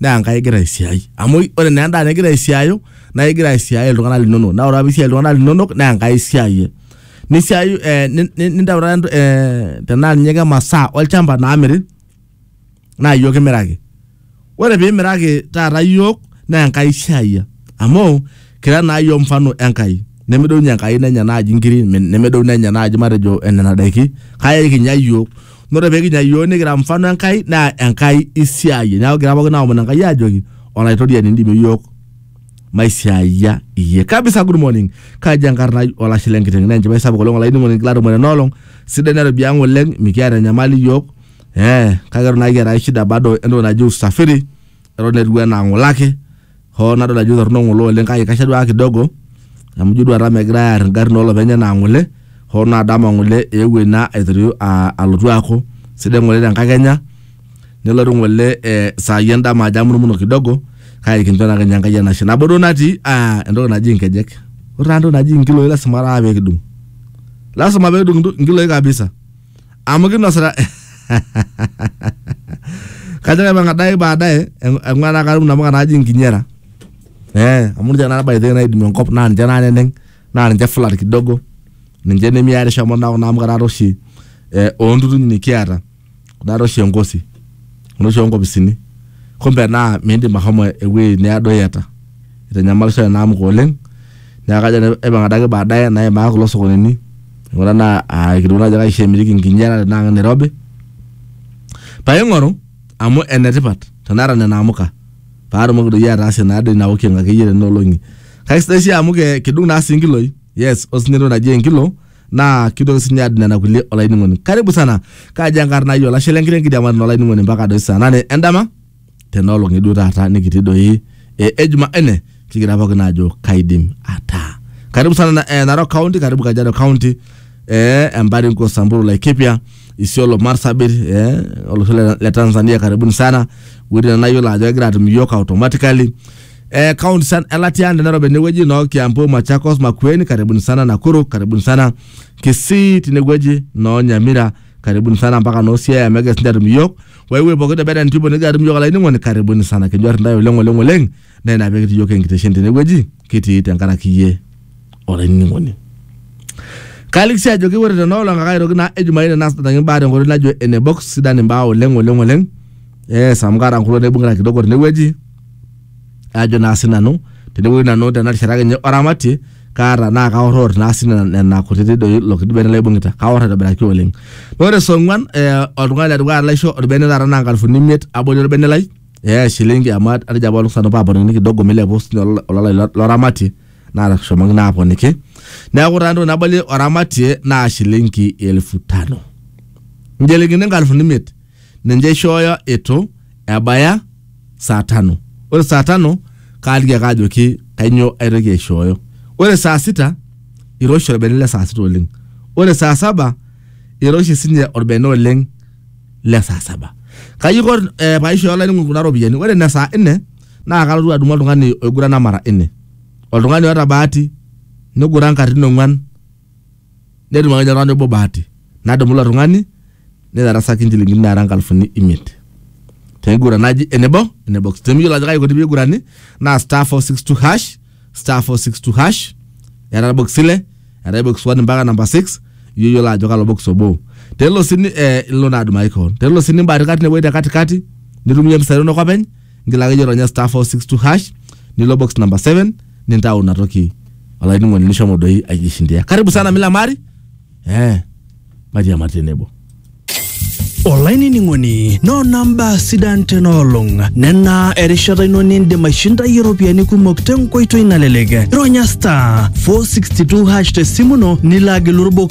naa enkai igira aisiai amu ore naa endaa nigira aisiayo naa igira aisiai iltung'anak linonok naa ore apa piisiai iltung'anak linonok naa enkai isiayie nisiayu eh, ni- ni- nintau taata ento- eh, tenaa ninye ke masaa olchamba naamiri naa iyiok kimiraki ore piimiraki taata iyiok naa enkai isiayia amu kira naa iyiok mfano enkai nemedounye enkai nenya naaji inkiri me- nemedounye enya naaji matejo eh, nena daiki kake ekinya iyiok na ore pee kinya iyiook nikira mfano Enkai naa Enkai isiaayie. Neeku kigira pookin aomon Enkai aajoki olaitoriani indimie iyiook maisiaayia iyie. Kabisa good morning. Kaji enkarna ai olashe lenkiteng naa enchipai sapuk oleng olainining'oni kila tumore ena olong sidai nairobi ang oleng mikiata enyamali iyiook eh kake eton naa kiata ake shida bado entoki naji usafiri eton etiu enaa ng'ole ake hoo nadol ajo torrono ng'ole oleng kake kaisho duake kidogo amu ijo duo taata megirae aar ingarrin olopeny enaa ng'ole hoo naa dama ng'ole eewuo ina aitorio uh alotu aaku sidai ng'ole tenkakenya nelotu ng'ole eh isai endama ajo amurumuno kidogo kake kincho naake ninye Enkai enashe nabo duo natii uh entoki naji inkejek ore taa entoki naji inkiloi lasima taa peekidung lasima peekidung inkiloi kabisa. amu kinosita kajo kaipang adake baadaye eng- eng'ua naa katum namuka naaji inkinyera eh, amu ninche naa by the way naidimie enkop naa ninche naa neneng naa ninche flat kidogo ninche nemiarisho amu naa kuna amuka taata oshi eh, oontutuny nikiata kuna taata oshi enkosi kuna oshi onkopisini kumbe naa miindim ahomo ewuei needo iyata itanyamalisho ena amuka oleng neeku kajo nanu aipang adake baadaye naimaa kulo sokonini aing'ura naa aikilikuan ajo kaisho emiriki nkinyara tenaa ke Nairobi paing'oru amu enetipat tenaata nena amuka paatumoki doi ataasie naa doi ina walking akeyie tenena olong'i kake sidai sii amu ke kidung naa sii nkiloi yes ore sinye entoki naji enkilo naa kitoki sinye adung nena kulie olainining'oni karibu sana kaaji enkarna ai olashe lenkiteng kidiamari naa olainining'oni mpaka doi saa nane endama. tena olong eduo taata nikitii doi eh, e Jumanne kigira pookin aajo kaidim ataa. Karibu sana na, eh, Narok County, karibu Kajiado County, eh, Embaringo, Samburu, Laikipia, Isiolo, Marsabit, eh, olosho le, le Tanzania karibuni sana. Wuejitin nayiolo ajo egira atum iyiook automatically. Eh, kaunti sana elatia tenairobi enewueji noo Kiambu, Machakos, Makueni, karibuni sana Nakuru, karibuni sana Kisii tinewueji noo Nyamira, karibuni sana mpaka noo Siaya megira sinche atum iyiook. wewe pooki te Beden Tribune nigira atum yiok olainining'oni karibuni sana kinyor intae oleng oleng oleng naa ina pee kitii yiok enkiteshen tenewueji kitii tenkaraki iyie olainining'oni kaaliki sii ajoki ore tenoolong ake aitoki naa ejumaine naasitaki imbaa tenkoitoi najo ene box sidan imbaa oleng oleng oleng yes amu kaata nkulo naibung'ita kidogo tenewueji ajo naa sinanu tenewueji nanu tena rishata akenye oramatie kaata naa kaoror naa sii nena- nena kutiti doi ilo kiti bene laibung'ita kaoror aitobiraki oleng naa ore saa ong'uan eh, oltung'ani ledukuya laisho orbene taata naa nkalifuni imiet abori orbene lai eh, shilingi amu atejo apa olosho nanu paaponikini kidogo milepu sinye olo- ololai lo- loramatie natashomoki naa aponiki neeku taa entoki nabalie oramatie naa shilingi elfu tano inchilingini nkalifuni imiet ninche ishooyo itu ebaya saa tano ore saa tano kaaliki ake ajoki kainyoo aitoki aishooyo ore saa sita iroshi orbene le saa sita oleng ore saa saba iroshi sinye orbene oleng le saa saba kaji aiko eh, paishooyo olainining'oni kuna ropiyiani ore ine saa nne naa kalotu adumu oltung'ani oigurana mara nne oltung'ani oota bahati niguran katitin ong'uan netum akenya oltung'ani obo bahati nadumu ilo tung'ani nitarasaki inchilingini naara nkalifuni imiet tenkiguran naji enebo enebo temiyiolo ajo kaji ikoni peigurani naa star 462 hash star 462 hash eeta box ile eetae box 1 mpaka namba 6 iyie oyiolo ajo kalo box obo tenelo sii ni- eh, ilo naa adumaki kewon tenelo sii nimbaatika tinewueji te katikati nitum iyie mpisai inonok openy ngila akeyie ronya star 462 hash nilo box number 7 nintau ina toki olainining'oni nishomo doi aijishindia karibu sana milamari eh mairiamari tenebo olainining'oni noona mbaa sidan tena olong nena erishata ino nindim aishindayie iropiyiani kumok tenkoitoi nalelek ironya star 462 hash tesimu ino nilo agilu irbox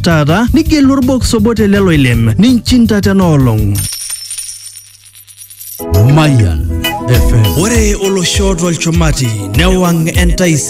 taata nigelu orbox obo te lelo ilem ninchinda tena olong. Mayan FM. Ore olosho tolchumati newang' entaisere.